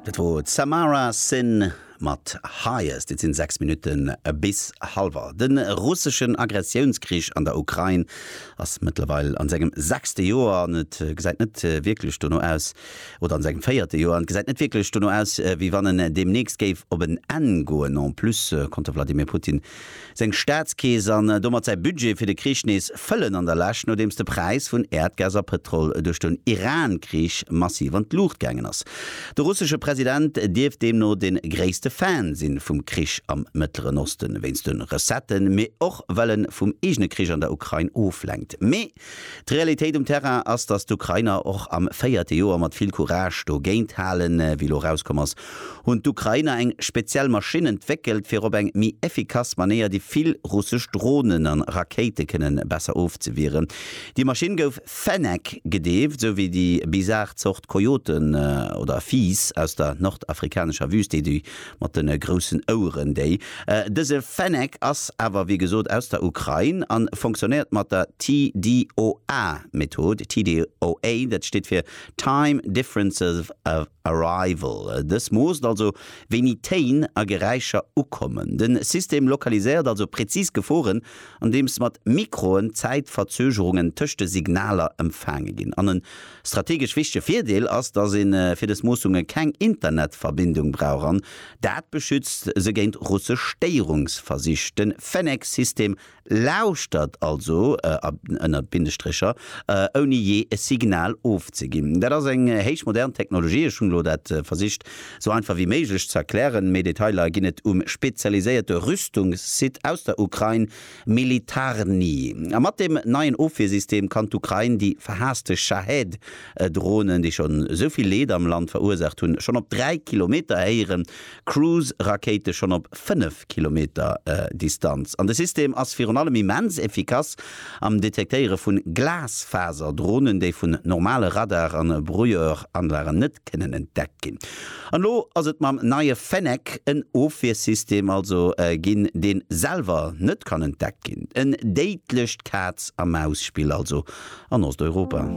Dat wor d'Samara Sin mat Highest. Et sinn 6 Minutten bis halwer. De russeschen Aggressiounskrich an der Ukrain ass mëttlerweil an sengem sechste Joer an et gesäit net wierklech dono aus, oder an sengem véierte Joer an et gesäit net wierklech dono aus, wéi wann en deemnächst géif op en Enn goen. En plus konnt de Vladimir Putin seng Staatskeess an domat säi Budget fir de Krich nees fëllen an der Lescht, nodeems de Präis vun Äerdgas a Pëtrol duerch den Iran-Krich massiv an d'Luucht gaangen ass. De russesche President dierft deemno de gréisste Fan si vum Krich am Mëttleren Osten, wéinst de Recetten, mee och well en vum eegene Krich an der Ukrain oflenkt. Mee D'Realitéit um Terrain ass, datt d'Ukrainer och am véierte Joer mat vill Courage dogéint halen. Wéi elo erauskomm ass, hunn d'Ukrainer eng speziell Maschinn entwéckelt, fir op eng méi efficace Manéier déi vill russesch Dronen an Rakéite kënnen besser ofzewieren. Déi Maschinn gouf Fennec gedeeft, sou wéi déi bizar Zort Kojoten oder Fiiss aus der nordafrikanescher Wüst, déi déi mat den groussen Oueren déi. Dëse Fennec ass awer wéi gesot aus der Ukrain an fonktionnéiert mat der TDOA Method, TDOA dat steet fir Time Difference of Arrival, dës moosst also wéini Téin a Geräischer ukommen. Den System lokaliséiert also präzis Geforen andeems mat Mikroen d'Zäitverzögerungen tëscht de Signaler empfaange ginn an en Strategesch wichtege Virdeel ass, dass een fir des Moossunge keng Internetverbindung brauch an dat beschützt se géint russesch Stéierungsversich. Den Fennek-System lauschtert also ënner Bindestrécher, ouni jee e Signal ofzeginn. Dat ass eng héich modern Technologie. Ech hunn elo dat versicht sou einfach wéi méiglech ze erklären. Méi Detailer ginn et um spezialiséierte Rüstungssite aus der Ukrain, Militarny. A mat deem neien Ofwiersystem kann d'Ukrain déi verhaasste Shahed Dronen, déi schonn esou vill Leed am Land verursaacht hunn, schonn op 3 Kilometer héieren, Cruise Rakéite schonn op 5 Kilometer Distanz. An de System ass virun allem immens effikass am Detektéiere vun Glasfaserdronen, déi vun normale Radar an Brouilleuranlagen net kënnen entdeckt ginn. An elo ass et mam neie Fennec en Ofwiersystem also ginn, deen selwer net kann entdeckt ginn. En déidlecht Kaz-a-Maus-Spill also an Osteuropa.